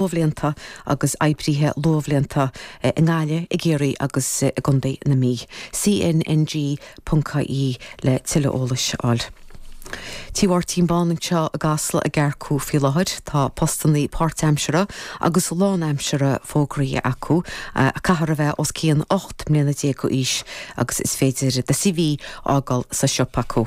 luathbhlianta agus oibrithe luathbhlianta i nGaillimh, i gCiarraí agus i gContae na Mí. CNNG.ie le tuilleadh eolais a fháil. Tí Mháirtín Bán anseo i gCasla ag earcú faoi láthair. Tá postannaí páirtaimseartha agus lánaimseartha fógraíthe acu. Caithfear a bheith os cionn ocht mbliana déag d'aois agus is féidir do CV fhágáil sa siopa acu.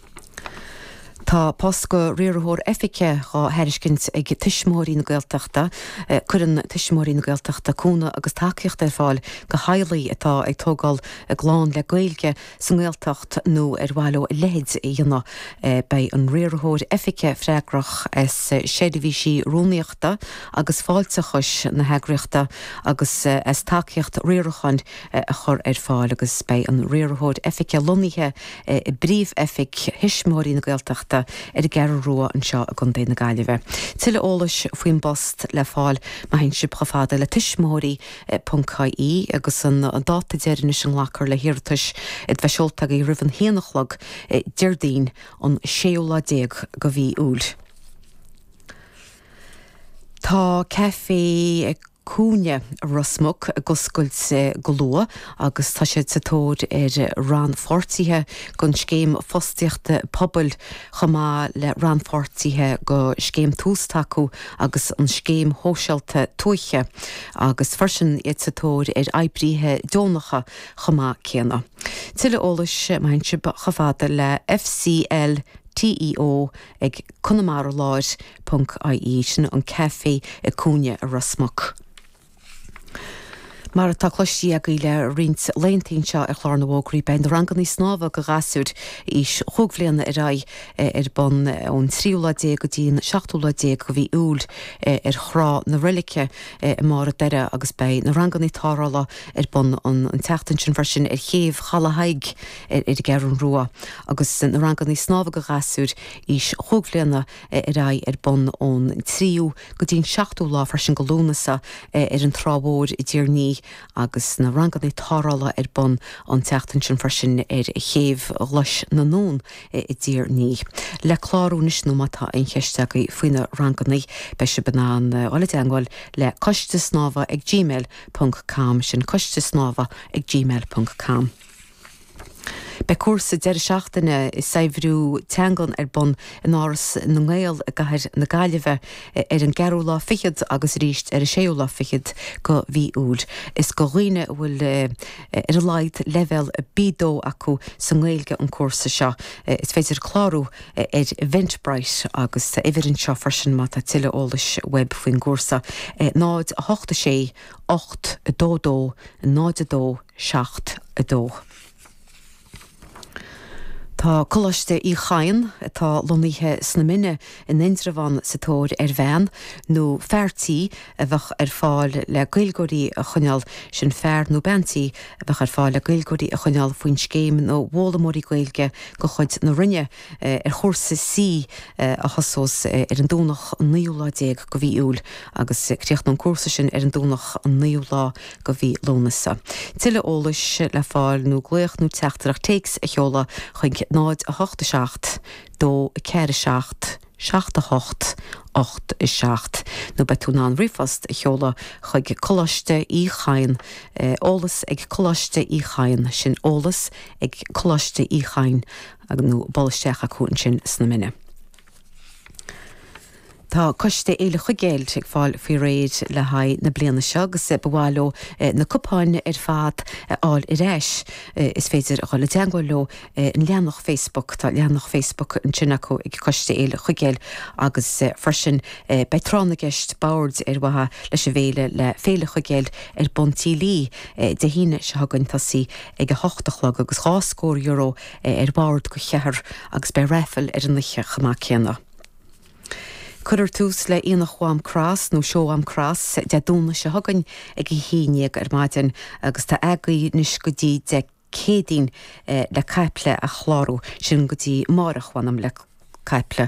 Tá post go riarthóir oifige dhá thairiscint ag Tuismitheoirí na Gaeltachta. Cuireann Tuismitheoirí na Gaeltachta cúnamh agus tacaíocht ar fáil go theaghlaigh atá ag tógáil a gclann le Gaeilge sa nGaeltacht nó ar mhaith leo a leithéid a dhéanamh. Beidh an riarthóir oifige freagrach as seirbhísí rúnaíochta agus fáilteachais na heagraíochta agus as tacaíocht riaracháin, a chur ar fáil agus beidh an Riarthóir Oifige lonnaithe i bPríomh-Oifig Thuismitheoirí na Gaeltachta ar an gCeathrú Rua anseo i gContae na Gaillimhe. Tuilleadh eolais faoin bpost le fáil má théann sibh chomh fada le tuismitheoirí.ie agus an dáta deireanais a nglacfar le hiarratais iad a bheith seolta agaibh roimh an haon a chlog Déardaoin an séú lá déag de mhí Iúil. Tá Caifé Cúinne Ros Muc ag oscailt go luath agus tá siad sa tóir ar rannpháirtithe don Scéim Fostaíochta Pobail chomh maith le rannpháirtithe go Scéim Tús Tacú agus an Scéim Shóisialta Tuaithe agus freisin iad sa tóir ar oibrithe deonacha chomh maith céanna. Tuilleadh eolais má théann sibh chomh fada le FCL TEO ag Conamara Láir ie sin an café i cúinne a Ros Muc. Mar atá cloistí agaibh le roinnt laethanta anseo ar Chlár na bhFógraí beidh na rangannaí snámha go ghasúir aois chúig bhliana ar aghaidh ar bun ón tríú lá déag go dtí an seachtú lá déag go mhí Iúil ar Thrá na Reilige i mBarr a' Doire agus beidh na rangannaí tarrthála ar bun an tseachtain sin freisin ar Chéibh Chaladh Thaidhg ar an gCeathrú Rua agus na rangannaí snámha go ghasúir aois chúig bhliana ar aghaidh ar bun ón 3ú go dtí an 7ú lá freisin go Lúnasa ar an Trá Mhór i dTír an Fhia agus na rangannaí tarrthála ar bun an tseachtain sin freisin ar Chéibh Ghlais na nUan i dTír an Fhia. Le clárú anois nó má tá aon cheist agaibh faoi na rangannaí beidh sibh in ann dul i dteangmháil le coistesnámha ag gmail ponc com sin coistesnámha ag gmail ponc com. Beidh cúrsa deireadh seachtaine i saibhriú teangan ar bun in Áras na nGael i gcathair na Gaillimhe ar an gceathrú lá fichead agus arís ar an séú lá fichead go mhí Iúil. Is do dhaoine a bhfuil ar a laghad leibhéal B2 acu sa nGaeilge an cúrsa seo. Is féidir clárú ar Eventbrite agus tá uimhir anseo freisin má tá tuilleadh eolais uaibh faoin gcúrsa, 0 8 6 8 2 2 0 2. 7, 2 Tá Coláiste Uí Chadhain, atá lonnaithe sna Minna in Indreabhán, sa tóir ar bhean nó fear tí a bheadh ar fáil le Gaeilgeoirí a choinneáil, sin fear nó bean tí a bheadh ar fáil le Gaeilgeoirí a choinneáil faoin Scéim na bhFoghlaimeoirí Gaeilge de chuid na Roinne. ar chúrsa C a thosós ar an Domhnach an 19ú lá go mhí Iúil agus críochnóidh an cúrsa sin ar an Domhnach an 9ú lá go mhí Lúnasa. Tuilleadh eolais le fáil nó glaoch nó teachtaireacht téacs a sheoladh chuig 087 247 78 87 nó beidh tú in ann ríomhphost a sheoladh chuig Coláiste Uí Chadhain, eolas ag Coláiste Uí Chadhain, sin eolas ag Coláiste Uí Chadhain. ag nó buail isteach acu ansin sna Mine. Tá Coiste Fhéile Chuigéil ag fáil faoi réir le haghaidh na bliana seo agus ba mhaith leo na cupáin ar fad a fháil ar ais. Is féidir a dhul i dteangmháil leo ar leathanach Facebook, tá leathanach Facebook ansin acu ag Coiste Fhéile Chuigéil agus freisin beidh Tráth na gCeist Boird ar mhaithe leis an bhFéile le Féile Chuigéil ar bun Tigh Lee Dé hAoine seo chugainn tosaí ag a hocht a chlog agus dhá scór euro é ar bhord go cheathrar agus beidh raifil ar an oíche chomh maith céanna. Cuirfear tús le Aonach Mhám Cross nó Seó Mhám Cross Dé Domhnaigh seo chugainn ag a haon déag ar maidin agus tá agaibh anois go dtí Dé Céadaoin le caiple a chlárú, sin go dtí amáireach mh'anam le caiple.